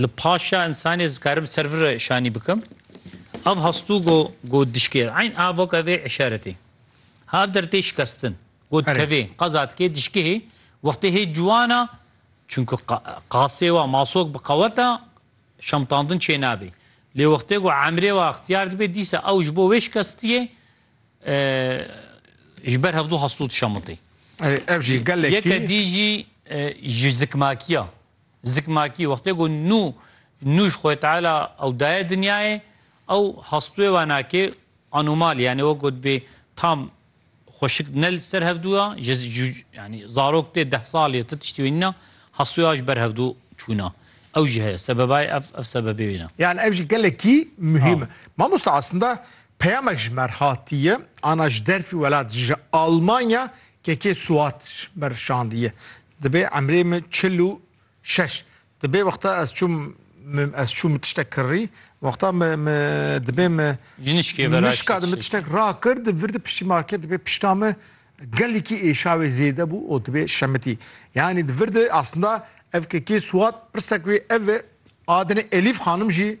Li paşa insanê zikarim ser vir şanî bikim. Ev hastû go go dişkê. Eyn avok evê işaretê. Hav der tê şikestin. Go dikevê. Qeza dikê dişkê hê. Wextê hê ciwana çünkü qasê wa masok bi qeweta şemtandin çê nabê. Lê wextê go emrê wa ixtiyar dibê dîsa ew ji bo wê şikestiyê ji ber hevdû hastû dişemitê. Ev jî gelekî. Yeke dî jî ji zikmakiya. Zikmakî, wextê ku nû nû ji Xwê Teala ew daye dinyayê, ew hastûyê wana ki anûmal e, yanî wek gotbê tam xweşik ne li ser hevdû ya, ji yanî zarok tê deh salî ya ti tiştî wê nîna, hastûyê wa ji ber hevdû çûna. Ew jî heye. Sebebayê ev ev sebebê wê ne. Yan ev jî gelekî muhîm e. Mamosta eslinda peyamek ji mer hatiye, ana ji derfî welat ji Almanya kekê Suat ji mer şandiye. Dibê emrê min çil û şeş. Dibê wexta ez çûm ez çû min tiştek kirrî, wexta min dibê min Jinişkê vera Nişka min tiştek rakir, di vir di piştî market dibê pişta min gelekî êşawê zêde bû û dibê şemitî. Yanî di vir de aslında ev kekê Swat pirsek wê ev e adinê Elîf xanim jî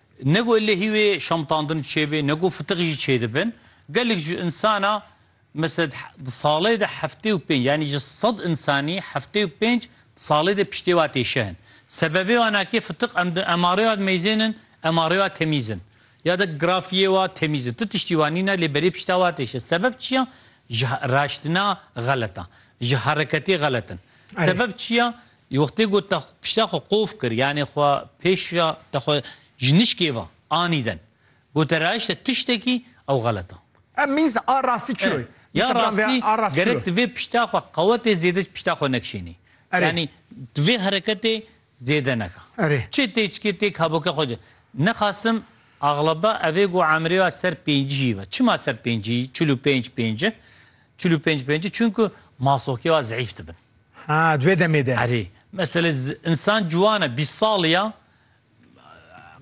Ne ku ellehî wê şamtandin çêbê, ne ku fitix jî çêdibin. Gelek ji insana mesel di salê de heftê û pênc yanî ji sed insanî heftê û pênc di salê de piştê wa tê şehin. Sebebê wan a ke fitix em di emarê wa dimeyzên in, emarê wa temîz in. Ya di grafiyê wa temîz in. Tu tiştî wan nîn e lê berê pişta wa tê şehin. Sebeb çi ya? Ji raştina xelet a. Ji hereketê xelet in. Sebeb çi ya? Di wextê ku te pişta xwe qof kir, yanê xwe pêşiya te xwe ji nişkê ve anîden, goterayîş te tiştekî ew xelet a. Ev mîz a rastî çi ro? Ya rastî gerek tu vê pişta xwe qewetê zêde pişta xwe nekişênî. Yanî tu vê hereketê zêde neke. Çi tê çikê têk heboke xwe de. Nexasim axlaba ev ê ku emrê ya ser pêncî jî ve. Çima ser pêncî, çil û pênc pênc e. Çil û pênc pêncî çunku masokê wa zeîf dibin. Ha di wê demê de. Erê. Meselê insan ciwan e bîst salî ya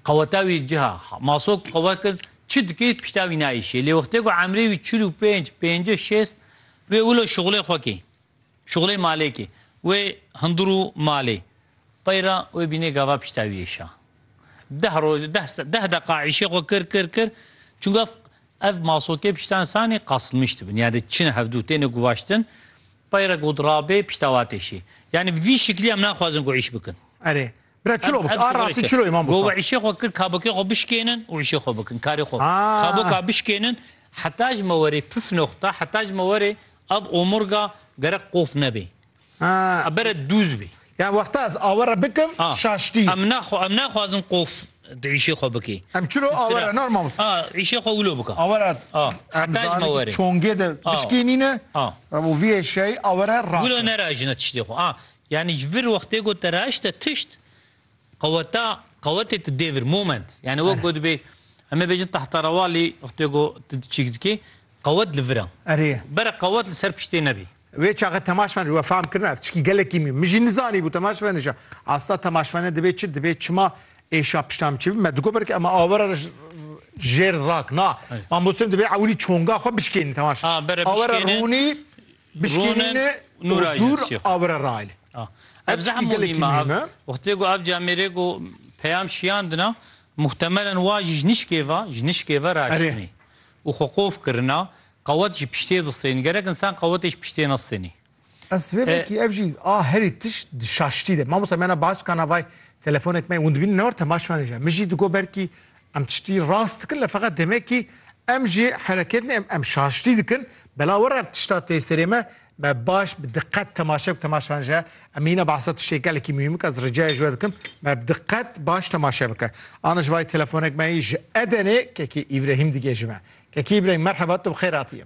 qeweta wî ciha masok qewet kir çi dikê pişta wî nayîşê. Lê wextê ku emrê wî çil û pênc, pêncî, şêst wê wilo şixulê xwe kê. Şixulê malê kê. Wê hundir û malê. Peyra wê bînê gava pişta wî êşa. Deh roj deh deqa îşê xwe kir kir kir çunku ev Ev masotê pişta insanê qasnmiş dibin. Yani çin hevdu têne guvaştin, peyre god rabê pişta wa têşî. Yani bi vî şiklî em naxwazin ku îş bikin. Erê. Bira çilo bik. A rastî çilo î Mamostan. Gowa îşê xwe kir kabokê xwe bişkênin û îşê xwe bikin. Karê xwe. Kaboka bişkênin heta ji me werê pif noxta heta ji me werê ev omurga gerek qof nebê. A bere dûz bî. Ya wexta ez awe re bikim şaştî. Em naxwe em naxwazin qof di îşê xwe bikî. Em çilo awe re nar mamosta. A îşê xwe wilo bike. Awe re em zanî ki çongê de bişkênîne û vî eşyayî awe re raxin. Wilo nerajine tiştê xwe. A yanî ji vir wextê ku te raşte tişt Qeweta, qewetê tu dê vir, moment. Yanî wek Erê. gotibê, em ê bêjin tahterawalî, wextê ku tu çîk dikî, qewet li vir e. Erê. Bere qewet li ser piştê nebî. Wê çaxê temaşvan jî we fehm kirine ev çikî gelekî mî. Min jî nizanîbû temaşvan îşa. Asta temaşvanê divê çi, divê çima êşa pişta min çêbî. Me digot belkî ema awera re jêr rak. Na, Mamosteyên divê ewilî çonga xwe bişkênî temaşvan. Ha, bere bişkêne. Awera rûnî Bişkînîn e û dûr awire raine. Ev zehma gelekî muhîm e. Wextê ku ev camêrê ku peyam şiyandina muhtemelen wa jî ji nişkê ve ji nişkê ve raştinî û xwe qof kirina qewet ji piştê distênî. Gerek însan qewetê ji piştê nestênî. Ez vê vekî ev jî a herî tişt di şaştî de. Mamosta me na baz bika navay telefonek me û dibînin ne war temaşvanê jî. Min jî digot belkî Em tiştî rast dikin lê feqet demekî em jî hereketin em em şaştî dikin bela were ev tişta tê serê me me baş bi diqet temaşe bik temaşe me ji em mîna behsa tiştê gelekî muhîm bik ez ricayê ji we dikim me bi diqet baş temaşe bike ana ji vayî telefonek me yî ji Edenê kekî Îbrehîm digê ji me kekî Îbrehîm merheba tu bi xêr hatiyê.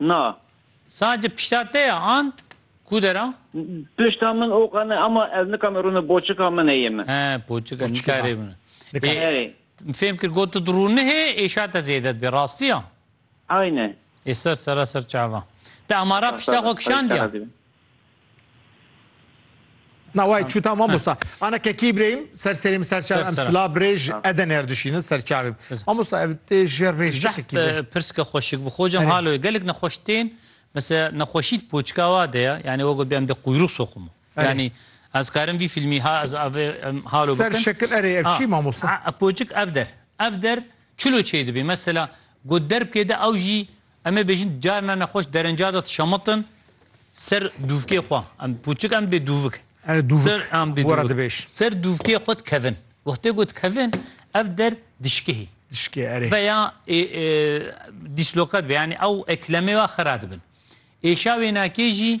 Na. Sadece pişta te ya an ku de ra? Pişta min oka ne ama ez nikame rûne boçika min heye min. He boçika Boçiki nikare ba. rûne. Nika. Ê Erê. fêm kir got tu rûne hê êşa te zêde dibe rastî ya? Aynen. Ê ser sera ser çava. Te amara pişta xwe kişandiya? Na way çûta mamosta. Ana kekî birêyim ser serê min ser çav em sila birêj eden er dişînin ser çavê min. Mamosta ev tê jê rêj çi kekî birê. Pirska xweşik bi xwe cem halo gelek nexweş tên mesela nexweşî di poçka wa de ya yani wego bê em dê quyrûq soximo. Yani ez karim vî filmî ha ez avê halo bikim. Ser şekil erê ev çi mamosta? Poçik ev der. Ev der çilo çê dibê mesela got derbkê de ew jî Em ê bêjin carina nexweş derinca de dişemitin ser dûvkê xwe. Em pûçik em bê dûvik. Erê dûvik were dibêj. Ser dûvkê xwe dikevin. Wextê ku dikevin ev der dişikihî. Dişikê erê. Veya dîslokat be yanî ew eklemê wa xira dibin. Êşa wênakê jî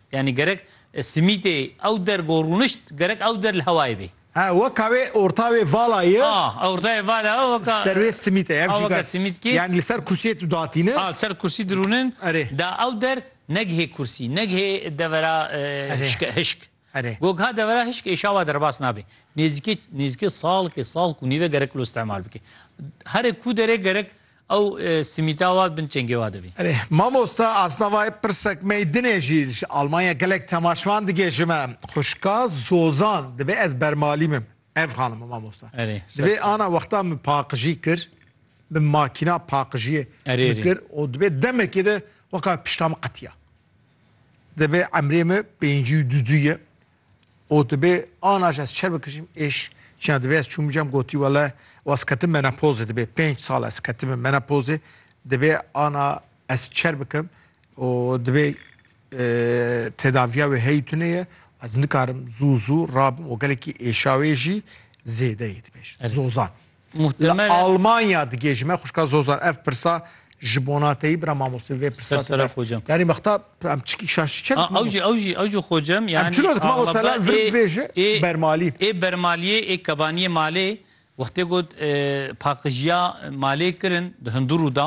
Yanî gerek simîtê ew der ku rûnişt gerek ew der li hewayê bê. Ha weka wê orta wê vala ye. A orta wê vala ye weka. Der wê simît e ev jî weka simît kî. Yanî li ser kursiyê tu datîne. A li ser kursî dirûnin. Erê. Da ew der negihê kursî, negihê devera hişke hişk. Erê. Gog ha devera hişk ê şawa derbas nabê. Nêzîkê nêzîkê salkê, salk û nîve gerek li istemal bike. Herê ku derê gerek Ew simîta wa bin çengê wa de bî. Erê mamosta asna va yê pirsek mey dinê jî ji Almanya gelek temaşvan digê ji me. Xwişka Zozan divê ez bermalî bim. Ev xanim e mamosta. Erê sed Divê sal. ana wexta min paqijî kir bi makîna paqijiyê Erê min erê. kir û divê demekê de weka pişta min qetiya. Divê emrê min pêncî û du du ye Otibê ana ji ez çer bikijîm êş çiya divê ez çûm cem gotî wele waz ketim menopozê dibê pênc sal ez ketime menopozê dibê ana ez çer bikim û dibê tedaviya wê heyî tune ye ez nikarim zû zû rabim û gelekî êşawê jî zêde yê dibêjin zozan. Muhtemelen. Li Almanya digê ji me xwişka Zozan ev pirsa ji bona te yî bira mamostê vê pirsa. Ser sera xocem. Yanî mexta em çikî şaş çi çek. Ew jî ew jî ew jî xocem yanî. Em çilo dikma o sela vir bivêje bermalî. Ê bermaliyê ê kebaniyê malê wextê ku paqijiya malê kirin di hundur û da.